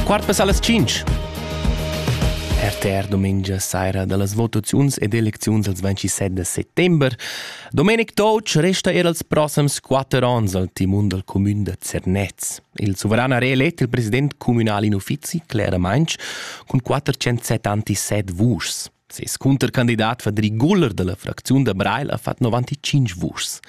Quart pass allas 5. RTR domengia saira dallas votaziuns ed elecziuns als 27 de settember. Domenic Toc resta er als proxims quatter onns al timon dal comün de Zernez. Il suveran ha reelett il president communal in uffizi, Clara Mainz, cun 407 antised vuschs. Ses cuntercandidat Fadri Guller da la fracziun da Breil ha fatg 95 vuschs.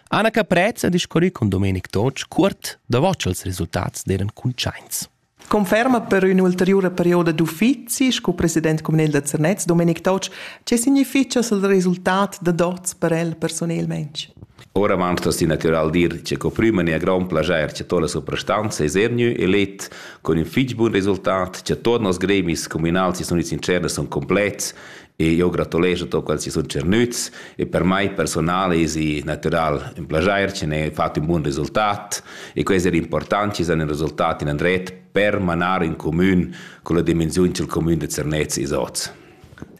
Anna Caprez ha discurrì cun Domenic Totsch curt davant ch'ils resultats eran cuntschaints. Conferma per ün'ulteriura perioda d'uffizi sco president communal da Zernez Domenic Totsch, che significha il resultat da dots per el personelmaing? Oravant asti natural dir che co prüma ne a grand plager che tola soprastanza es ernü elet con ün fich bun resultat che tuot nos gremis comunals si sun its in tscherna sun complets e io gratulescho tot quels chi sun tschernüts e per mai personale esi natural ün plager che n'he fat ün bun resultat e que es eir important chi san ün resultat in andret per manar ün comün con la dimensiun cha'l comün da Zernez es hoz.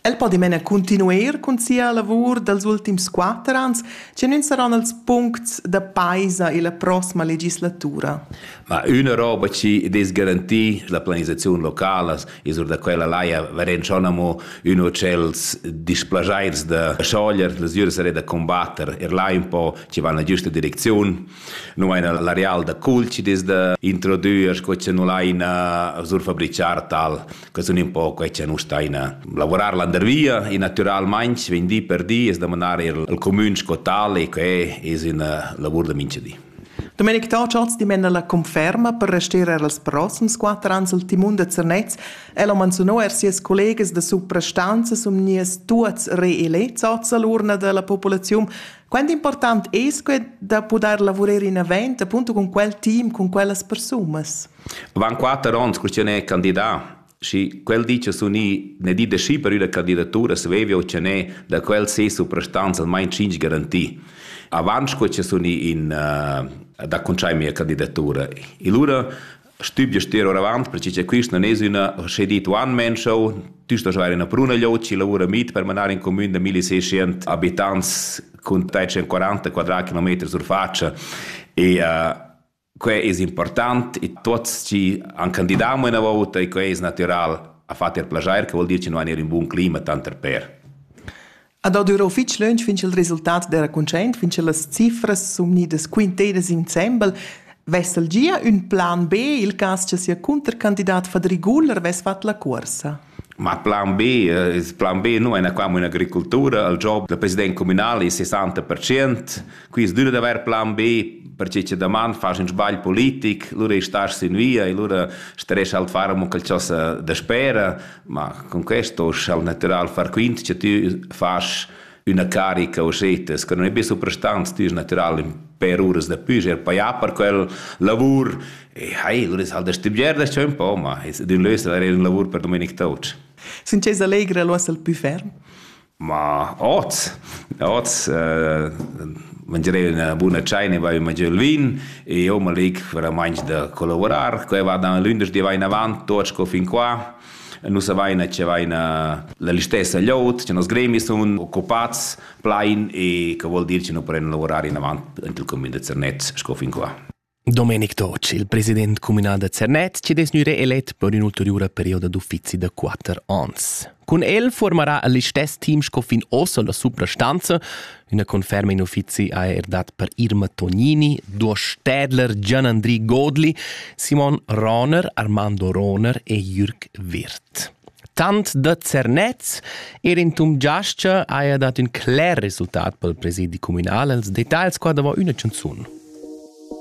El po dimena cuntinuer cun sia lavur dals ultims quatter ans, che nun saron els puncts da paisa illa prossima legislatura. Ma üna roba chi dess garantir la planisaziun locala es or da quella laja verend schon amo üno tschels displajaints da schoglier, las üras saré da combatter er là ün po chi va in giüsta direcziun. Nu aina l'areal da cul chi dess da introdüer sco chi nu laina surfabrichar tal. che sun ün po quai cha nus staina lavorar landervia e natüralmaing vegn di per di es da manar eir al cumün sco tal e que es üna lavur da mincha di. Domenic Tauchatz dimena la conferma per rester er els prossims quatter ans al timun da Zernez. El ha manzuno er sias collegas da suprastanza sum nies tuots reelets oz all'urna della popolazione. Quanto important è es que da poter lavorare in avant, appunto con quel team, con quellas persunas? Van quatter ons cur ch'ün è candidà. Schi quel di cha sun i ne di da schi per üna candidatura svevi ottener da quel ses suprastanza almain tschinch garanti. Avant sco cha sun i in uh, da cuntschair mia candidatura. E lura stübgia ster oravant perche cha quist non es üna sche dit one man show, tü sto avair üna bruna loci lavura mit per manar in comün da 1600 abitants cun 340 quadrat kilometri sur faccia e uh, Quei es important e tuots chi han candidau mo üna vouta e quei es natüral ha fat eir plaschair, che vuol dir chi nu han eir ün bun clima tanter per. A do düra fich lönch fin cha'l resultat d'eira cuntschaint, fin cha las cifras sun gnidas quintedas insembel. Vessa'l gia ün plan B, il cas cha sia cuntercandidat Fadri Guler vess fat la cuorsa? Ma plan B, il plan B nu è qua amo un'agricultura, il job dal president cumünal es 60%, quist düna d'avair plan B perche cha daman fas ün sbagl politic, lura istast sün via e lura starest halt far amo qualchosa daspera, ma con questo sa'l natüral far quint cha tü fas üna carica osetas che non è be suprastants tüs natural per uras da püger paia per quel lavur e hai ur es halt stibgier da un po ma es d'ün lös da un lavur per Domenic Touch sin che s'allegra lo essel pü ferm ma oz oz uh, mangerei una buona chai ne vai mangiare il vin e io ma leg veramente da collaborar qua va da lunedì vai in avant tot sco fin qua Nus avain che vain la listessa glieud, che nos gremi sun occupats plain e che vuol dir che nu prenn lavurar inavant int il cumün da Zernez sco fin qua. Domenic Toc, il president comunal da Zernez, ci des gnüre elet per ün'ulteriura perioda d'uffizi da quatter ans. Cun el formarà el listess team sco fin ossa la suprastanza, Üna conferma in uffizi ha er dat per Irma Tognini, Duos Städler, Gian-Andri Godli, Simon Roner, Armando Roner e Jürg Wirth. Tant da Zernez er in tum giascha haja dat ün cler resultat pel presidi communal als detagls qua davò üna chanzun.